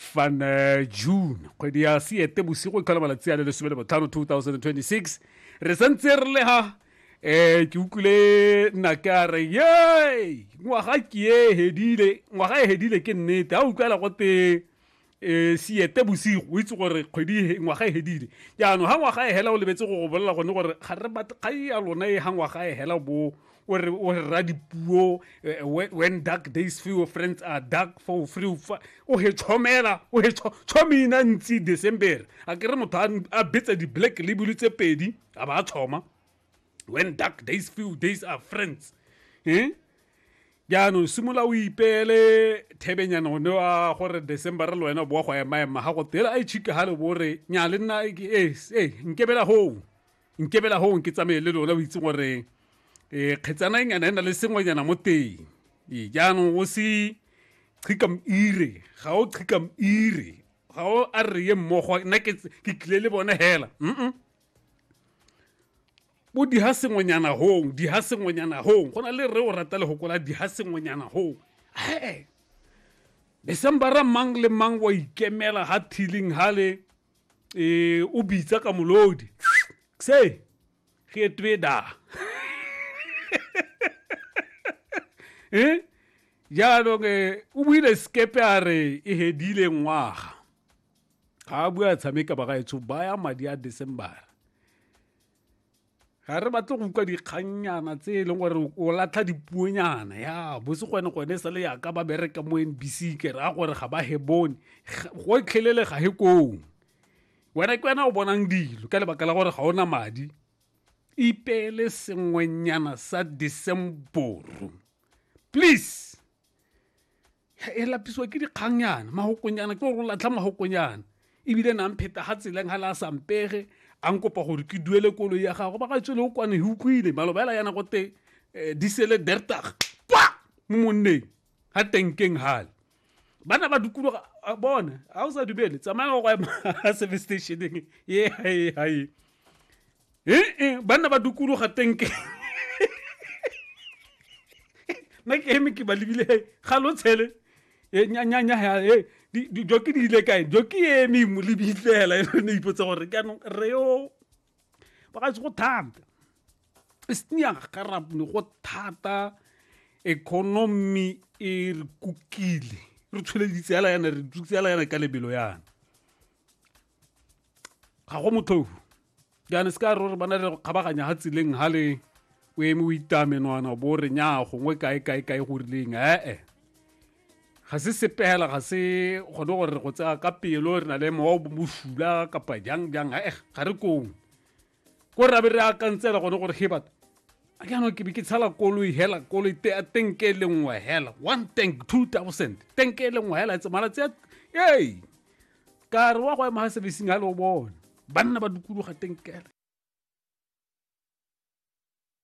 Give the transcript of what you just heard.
fan eh, june kgwedi ya seete bosigo e kgala malatsi a le lesome le botlhano 2026 re santse re le ha um ke utlwile nake a re ye ngwaga ke e hedile ngwaga e hedile ke nnete a utlwela gote um seete bosigo o itse gore kgwedi e ngwaga e hedile jaanong ga ngwaga e hela o lebetse go go bolela gone gore ga re batle kgai ya lona e ga ngwaga e hela bo o re o re ra dipuo eh, when, when dark days few friends are dark for free fa o he chomela o he cho- chomina ntsi december a ke re motho a n- a betsa di black label tse pedi a ba a choma when dark days few days are friends eh jaanong simolola o ipeele thebenyana one wa gore december le wena o boa go emaema ga go tela a itšhike ga le bore nya le nna ke- eh, eh, nkebela hoo nkebela gong ke tsamaye le lona o itse gore um eh, kgetsana e nyana e na le sengwenyana mo teng ee jaanong o se chikam ire ga o chikam ire ga o a re ye mmogo nna ke tlile le bone hela mm bo di ha sengwenyana hong di ha sengwenyana hong go na le re o rata le gokola di ha sengwenyana hong he decembera mang le mang wa ikemela ha thiling hale e o bitsa ka molodi se ge twe da eh jaanong eh, o buile sekepe a re e hedile ngwaga ga a bua tshameka ba gaetsho baya madi a december ga re batle go utlwa dikgannyana tse e leng gore o latlha dipuonyana ya bose gone gone sa le yaka ba bereka mo n b c ke raya gore ga ba he bone go tlhelele ga he koo wena ke wena o bonang dilo ka lebaka la gore ga o na madi ipeele sengwenyana sa decemboro please e lapisiwa ke dikgangyana magokonyana ke gore o latlha magokonyana ebile nang pheta ga tseleng ga le a sampege a nkopa gore ke duele koloi ya gago ba ga tswele o kwane go kwile maloba ela yana gote eh, di sele dertag kwa mo monneng ga tenkeng gale bana ba dukologa bone ga o sa dumele tsamaya go ema service stationeng ye hae hae ee ba nna ba dukologa tenke nna ke eme ke ba lebile ga lo tshele e, nyanyanya e, joki di ile kae joki e eme mo lebitlela e ne ipotsa gore jaanong re yo ba ga se go thata e senya garapne go thata economy e re kukile re tsholeditse yana re tsutse yana ka lebelo yana ga go motlhou jaanong se ka re ba na le go kgabaganya ga tseleng ga le o eme o itamenwana bo re nya gongwe kae kae kae go rileng ee ga se sepela ga se gone gore go tsaya ka pelo re na le mowa o bosula kapa jang jang ee ga re kong ko rabe re akantsela gone gore he batho a ke anong ke be ke tshala koloi hela koloi tenke e le nngwe hela one tank two thousand tank e le nngwe hela tse malatsi a ee ka re wa go ema ga sebesing ga le o bona banna ba dukologa tenkele